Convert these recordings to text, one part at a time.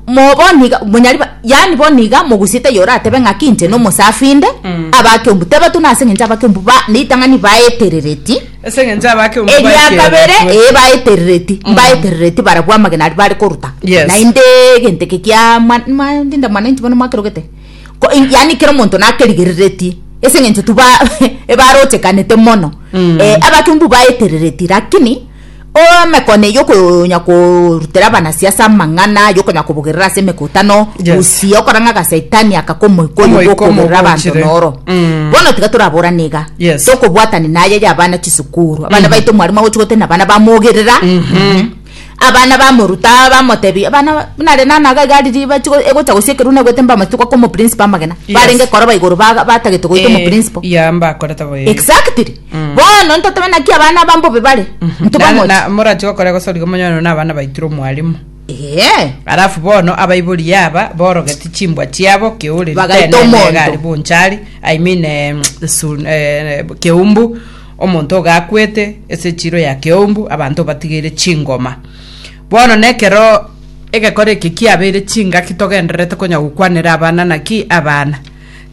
mo bono iga monyari ba- yaani bono iga mogusiete eye oratebe ng'aki inche na omosafi inde Mm. abakeumbu teba tu nase eng'encho abakeumbu ba- ne ritang'ani baeterereti ase eng'encho abake omu eria baikere kabere batwe. ee baeterereti mbaeterereti barabwo amagena aria bare koruta Yes. naende egento eke kia mwa- mwa- ndinde mwananchi bono mwakerogete Ko- in- yaani kera omonto nakerigerereti ase eng'encho tu ba- ebarochekanete mono Mm. Eh, abakeumbu baeterereti lakini Emekone y'okonya korutera abanasiasa amang'ana y'okonya kobogerera ase emekutano Yes. gusii okora ng'a gasaitani akaka omoika oyo Omoika bw'okogerera abanto omogochire. noro Mm. bono tiga toraborane iga Yes. tokobwatani naye ya abana chisukuru abana baito omwarimu agochi gotena abana bamogerera abana bamoruta bamotebi abana ba- nare nana iga igari riba chigo- egocha gosia ekeruna egwete mbamati goka omoprincipo amagena Yes. barenge koroba igoro ba- batagete goita Eh, omoprincipo ya mbakorete boye exactly bono ntotobe naki abana aba mbobe bare Na- ntobamoche na- morati gokora gosoriga omonywani one abana baitire omwarimo Ee, arafu bono abaibori aba borogeti chimbwa chiabo keureri Bagaita tenene omonto. egari bonchari i mean em, sun- eh, keumbu omonto ogakwete ase echiro ya keumbu abanto batigeire chingoma bono nekero egekora eke kiabeire chingaki togendererete konya gokwanera abana naki abana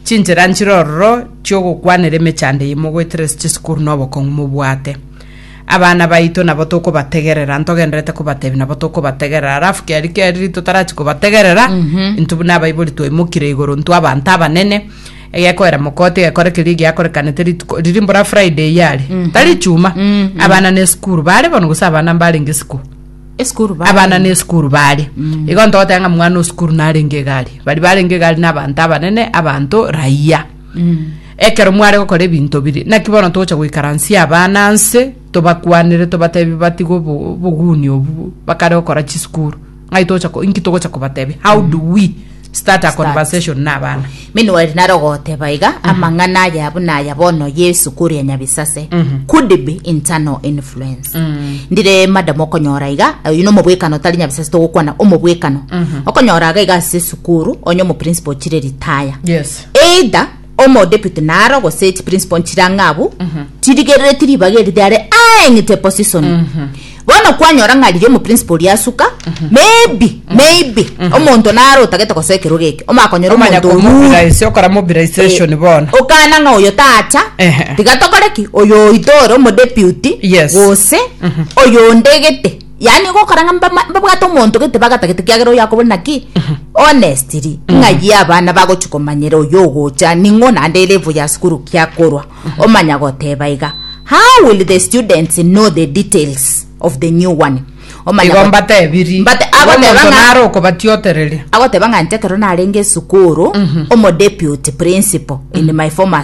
Chinchera nchire ororo chi'ogokwanera emechando eye mogoetera ase chisukuru na obokong'u mobwate. Abana baito nabo tokobategerera, ntogenderete kobatebia nabo tokobategerera. Alafu kiaria kiaria riria totarachi kobategerera, intwe buna abaibori twaimokire igoro, intwe abanto abanene, egekoera mokoti egekora keria giakorekanete rituko riria mbora Friday yari, tari Echuma. Abana na esukuru, bare bono gose abana mbarenge isiko. Esukuru bare. abana ne esukuru bare igo ntogoteba ng'a mwana o sukuru narenge egari bari barenge egari na abanto abanene abanto raia ekero mware gokora ebinto biria naki bono togocha goikaransia abana nse tobakwanere tobatebi batige obo- oboguni obu bakare gokora chisukuru ng'ai togocha ko- inki togocha kobatebia how do we Start a conversation na abana. Meanwhile naro goteba iga mm -hmm. amang'ana aya buna aya bono Yesu kuria nyabisase mm -hmm. could be internal influence mm -hmm. ndire madam okonyora iga uyu no mobwekano tari nyabisase togokwana omobwekano mm -hmm. okonyora ga iga ase sukuru onye omo principal chire retire yes either omo deputy naro gose chi principal nchire ang'e abwo tirigerereti ribaga eri riare aeng'ite position bono kwanyora ng'a riria omo principal oria asuka maybe maybe omonto naro otagete gosa ekero geke omakonyora Omanya omonto oyure komobilize, okora mobilization bono. okana ng'a oyo tacha Ehe. tiga tokore ki oyo oito ore omodeputy Yes. gose oyo onde egete Yaani gokora ng'a mbama- mbabwate omonto gete bagatagete kiagera oyo akobore naki honestly ng'ayie abana bagochi komanyera oyo ogocha ning'o naende elevo ya sukuru kiakorwa omanya goteba iga how will the students know the details of the new one omanya igo got- mbatebirie Mbate- Igo agoteba omonto ng'a- nare okobatiotereria agoteba ng'a inche ekero narenge esukuru omodeputy principal in my former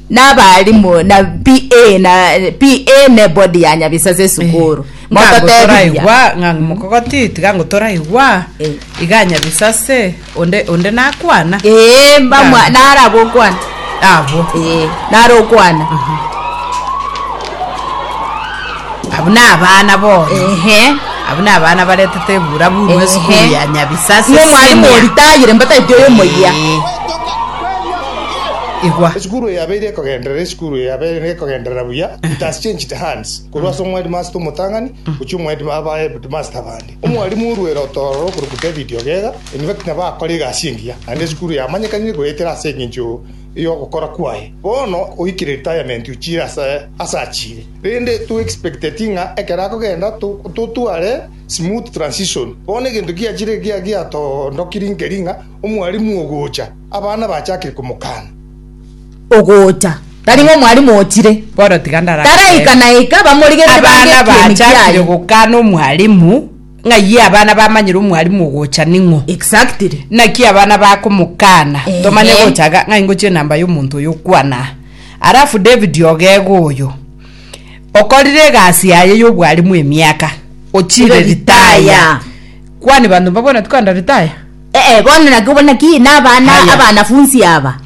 Nabaalimu na PA na PA ne body ya Nyabisa ase esukuru. Mototebiria. Ngagotoraigwa ng'a mokogoti tiga ngotoraigwa Eh. iga nyabisa ase onde onde nakwana Ee, mbamwa Ng'a- nara gokwana. abo Ee, nara okwana. abo nabana bono Ehe. abo nabana baretete ebura bunwe Ehe. esukuru ya nyabisa ase Ng'o mwalimu senior. oritayire mbataiti oyo moyia. Eh. Igwa. Esukuru eye yabeire ekogenderera esukuru eye yabeire nekogenderera buya it has changed hands korwa ase omwedimasta omotang'ani gochia omwedima abaedimasta abande omwarimu oruere otororo okoruku david ogega in fact nabo akore egasi engiya naende esukuru yamanyekanire goetera ase eng'encho yogokora kwaye bono oikire retirement ochire ase ase achire rende to expecteti ng'a ekero akogenda to- totware smooth transition bono egento giachire gia- giatondokiri nkeri ng'a omwarimu ogocha Abana bachakire komokana. Ogocha. Tari ng'a omwalimu ochire. Bono tiga ndarache. Taraika na ika, bamorigerere Abana bange ekiemi bachakire kiaye. gokana omwalimu, ng'ayio abana bamanyire omwalimu ogocha ning'o. Exactly. Naki abana bakomokana. Ehe. Tomanye gocha iga, ng'a ingochie enamba y'omonto oyo okwana aa. Alafu David ogego oyo, okorire egasi yaye y'obwalimu emiaka, ochire Ire retire. retire. Kwani banto mbabwate kogenda retire? Ee, bono naki obone naki nabana Haya. abanafunsi aba